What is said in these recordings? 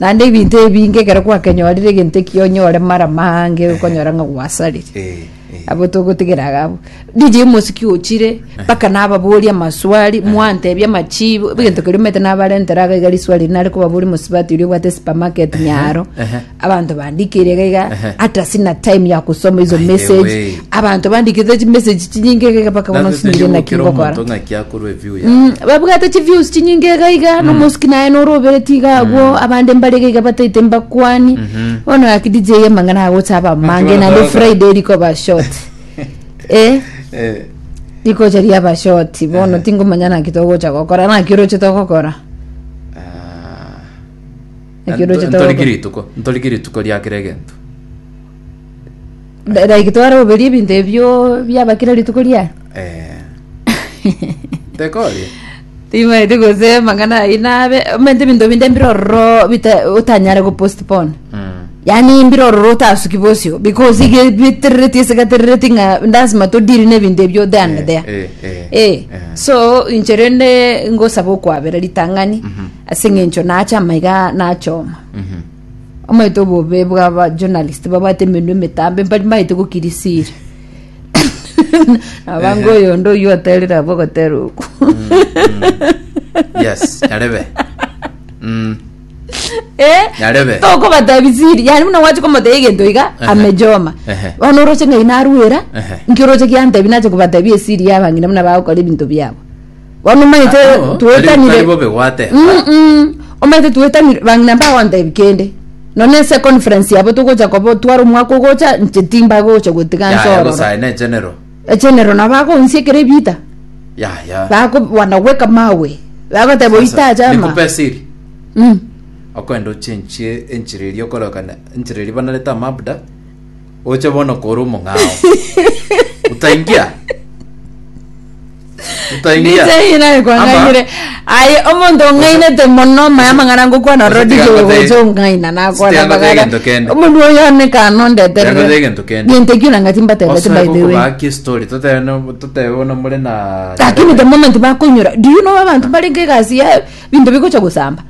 Naende ebinto ebinge ekero gwakenyorire egento ekio onyore marama ange okonyora ng'a gwasarire Eh, eh. abo togotigera iga abwo DJ omosiki ochire mpaka nababoria amaswali mwantebia amachibo egento keria omanyete nabarentera iga iga riswali eri nare kobaboria omosubati oria obwate supermarket nyaro ehe. abanto bandikire iga iga Ehe. hata sina time ya gusoma hizo By the message way. abanto bandikire chimessage chinyinge iga iga mpaka bono Nabe sinyire naki tonyobokera omonto ngokora ng'aki akorwa babwate chiviusi chinyinge iga iga na omosuki naye nore obereti iga agwo abande mbare iga iga bataete mbakwani bono gaki dj amang'ana agocha aba amange Akibona naende saga. friday rikoba short eh Eh, rikocha riaba short bono tingomanya naki togocha gokora naki oroche togokora ah. Ekero Nto- chitoko. ntoriki rituko ntoriki rituko riakera egento Like like twaraoberia ebinto ebio biaba kera rituko riaye Eh. Tekoria? timaeti gosema ng'ana ayi nabe omente ebinto binde mbire ororo bita- otanyare go postpone Mm. yaani mbire ororo otasuki bosio because ige biterereti ase gaterereti ng'a lasima todiri na ebinto ebio there and Eh, there eh, eh, Eh, eh. so inche rende ngosaba okwabera ritang'ani Mhm. ase eng'encho nacha amaiga nachoma Mhm. Omanyete obobe bw'aba journalist babwate emenwa emetambe mbari maete gokirisira abange Ehe. oyonde oyio oterire abo ogotera oku yes nyarebe Mm, Eh, Nyarebe. tokobatabisiri yani buna gwache komotebia egento iga Ehe. amejoma Ehe. bono oroche ng'ai narwera Ehe. nki oroche giantebi nache kobatebia esiri y'abang'ina buna bagokora ebinto biabo Bono omanyete Abo, tari- twetanire tari bobe gwateba. Mm-mm. omanyete twetanire bang'ina mbagontebi kende nonye ase econference yabo togocha koba otware omwaka ogocha inche timbagocha gotiga Yaya, nsororo bosae ne general. echenero nabo bagoonsi ekero ebiita Yaya. bako wanaweka mawe bagoteba oita Sasa, acha ama nikupe siri. Mm. Okwenda ochenchie enchera eria okorokana enchera eria banarete amabuda. Oche bono kore omong'ao. Utaingia? Utaingia? Ndise naye kwang'ainire. Aye omonto ong'ainete mono maya mang'ana ngokwana Ose rodi tiga ngote- gogocha ong'aina nakwana tiga ngote magana. egento kende. Omondu oyo one kana Tiga ngote egento ondeterere. kende. Gento ekio nang'ati mbatebete Osoe by the way. gokobaaki story, totebe no- totebe bono more na- Lakini the moment bakoinyora, do you know abantu barenge egasi ya binto bigocha gosamba?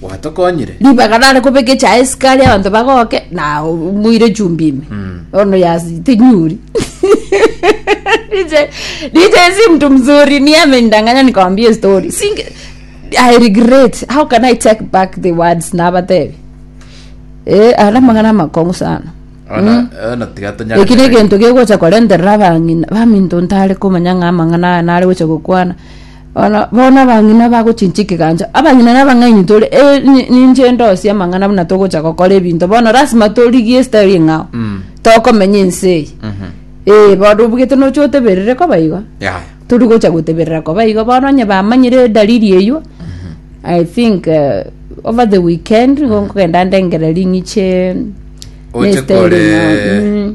gwatokonyire. ribaga nare kobeka echaye sukari abanto bagoke na o- moire chumbi ime bono ya tinyuri DJ DJ si mtu mzuri ni amenidanganya nikamwambia hiyo story Singe, I regret how can I take back the words na abatebi eh ara magana makongo sana Ona- ona tiga tonyare- eki negento gegocha korenterera abang'ina baminto ntare komanya ng'a amang'ana aya nare gocha gokwana Bono bono abang'ina bagochinchia ekegancho abang'ina na abang'aini tore eh, ni- ninche ndosie amang'ana buna togocha gokora ebinto bono lasima torigie style eng'ao Mm. tokomenya ense eye Mhm. ee bono obogete nocha oteberere koba igo Yaya. tori gocha goteberera koba igo bono onye bamanyire edalili eywo i think eh, over the weekend igo nkogenda ndengere ring'iche Oche nestaili kore- ng'ao. Mm.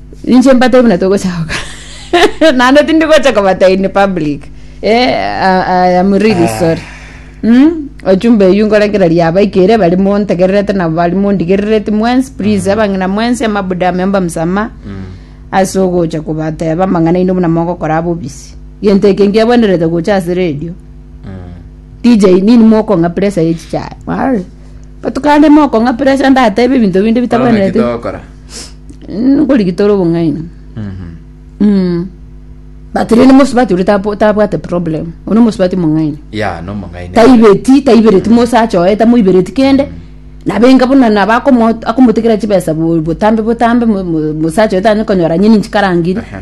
Ninche mbatebie buna togocha gokora naende tindi gocha kobata in public eh, I, I am really sorry mm? ochumba eyu nkorengera riaba ikere bari montegererete nabo bari mondigerereti mwensi please abang'ina mwensi amabuda ameomba msama ase ogocha kobateba amang'ana ino buna mogokora abobisi gento eke nkiabwenerete gocha ase radio DJ nini mokong'a pressure ye chichae Wari. Botuko ande mokong'a pressure ndatebe ebinto binde Bono naki bitakwenerete. togokora? Mm, nkorigi tore obong'aini. Mhm. Mm. But rende mosubati oria tabo- tabwate problem. Oria mosubati mong'aini. Ya, no omong'aini. taibeti taibereti mose achoe tamoibereti kende nabo enga buna nabo akomo- akomotekera chibesa bo- botambe botambe mo- mo- mose achoe tanyare konyora nyeni nchikarangirie Aha.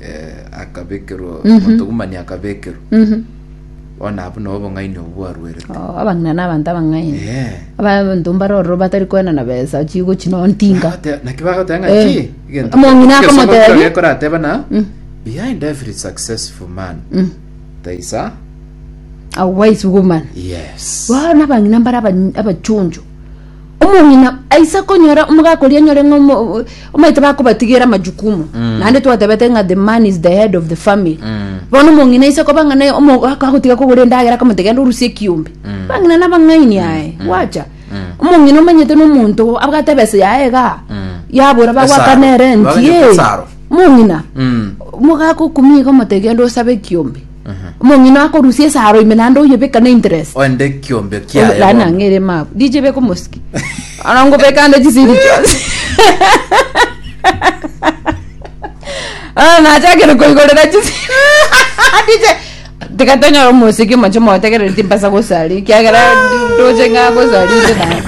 eh, akabekerwa omotugumani akabekerwa bono abwo nabo obong'aini obwo bwaruerete Oh, abang'ina na abanto abang'aini Eh. abanto mbare ororo batari kwena na besa chigochi nontinga Bagate- naki bagoteba ng'a Eh. ki egento- Omong'ina egento akamotebia. somo kero gekorateba na behind every successful man there is a a wise woman yes bono abang'ina mbare aba- abachonjo Omong'ina aise konyora omogaka oria anyore ng'a omo- o- omaete bakobatigera amajukumu naende twatebete ng'a the man is the head of the family bono omong'ina aise koba ng'a naye omogaka agotiga kogora endagera akamotebia genda orusie ekiombe bang'ina nabang'aini aye gwacha omong'ina omanyete na omonto abwate ebesa yaye igaa yabora bagwakana Esaro. erenti Baganyete eh. esaro. omong'ina Mm. omogaka okumia iga omotebia genda osabe ekiombe omong'ina akorusia esaro ime naende oyebeka na interest Oende ekiombe Oyo- kiaye laana bono. ng'ere mabu dije beka omosiki ana ngobeka ande chisiri chionsi ana nachakire koigorera chisiri dije tiga tonyore omosiki omoche motegereri timbasa gosari kiagera ndoche ng'a gosari inde naye